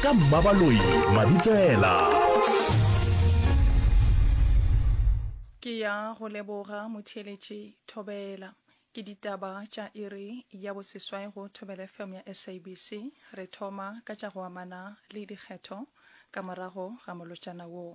ka mmabaloi mabitsela ke ya go leboga motheeletši thobela ke ditaba tša iri ya boseswai go thobela fm ya sabc re thoma ka tša go amana le dikgetho ka morago ga molotšana woo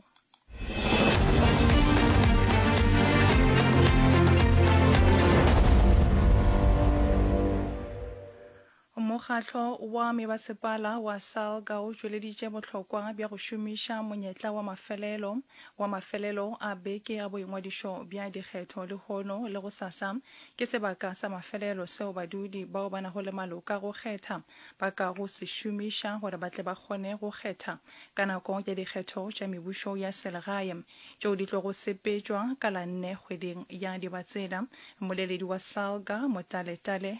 Mokgatlo wa Mebasepala wa SALGA o tšweleditše bohlokwa bja go šomiša monyetla wa mafelelo wa mafelelo a beke a boingwadišo bja dikgetho lehono le gosasa ke sebaka sa mafelelo seo badudi bao ba nago le maloka go kgetha ba ka go se šomiša gore ba tle ba kgone go kgetha ka nako ya dikgetho tša mebušo ya selegae tšeo di tlogo sepetšwa ka la nne kgweding ya Dibatsela. Mmoleledi wa SALGA, Motale Tale,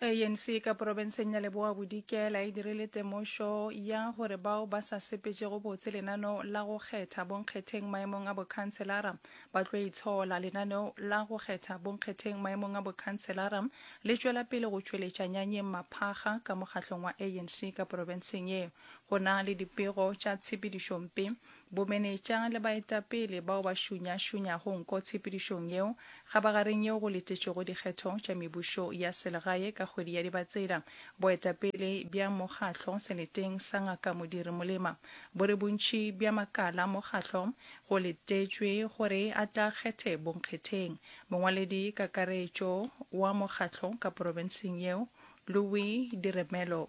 anc ka porobenseng ya leboa bodikela e dirile temošo ya gore bao ba sa sepetšego botse lenaneo la go kgetha bonkgetheng maemong a bokhanselara ba tlo itshola lenaneo la go kgetha bonkgetheng maemong a bokhanselara le tšwela pele go tšweletša nyanyeng maphaga ka mokgahlong wa anc ka porobenseng ye go na le dipego tša tshepedišompe Bomenetša le baetapele bao ba šunyašunyago nko tshepedišong yeo kgabagareng yeo go letetšwego dikgetho tša mebušo ya selegae ka kgwedi ya Dibatsela. Boetapele bja mokgahlo seleteng sa Ngaka Modiri Molema bo re bontši bja makala a mokgahlo go letetšwe gore a tla kgethe bonkgetheng. Mongwaledi kakaretšo wa mokgahlo ka porofenseng yeo, Louis Diremelo,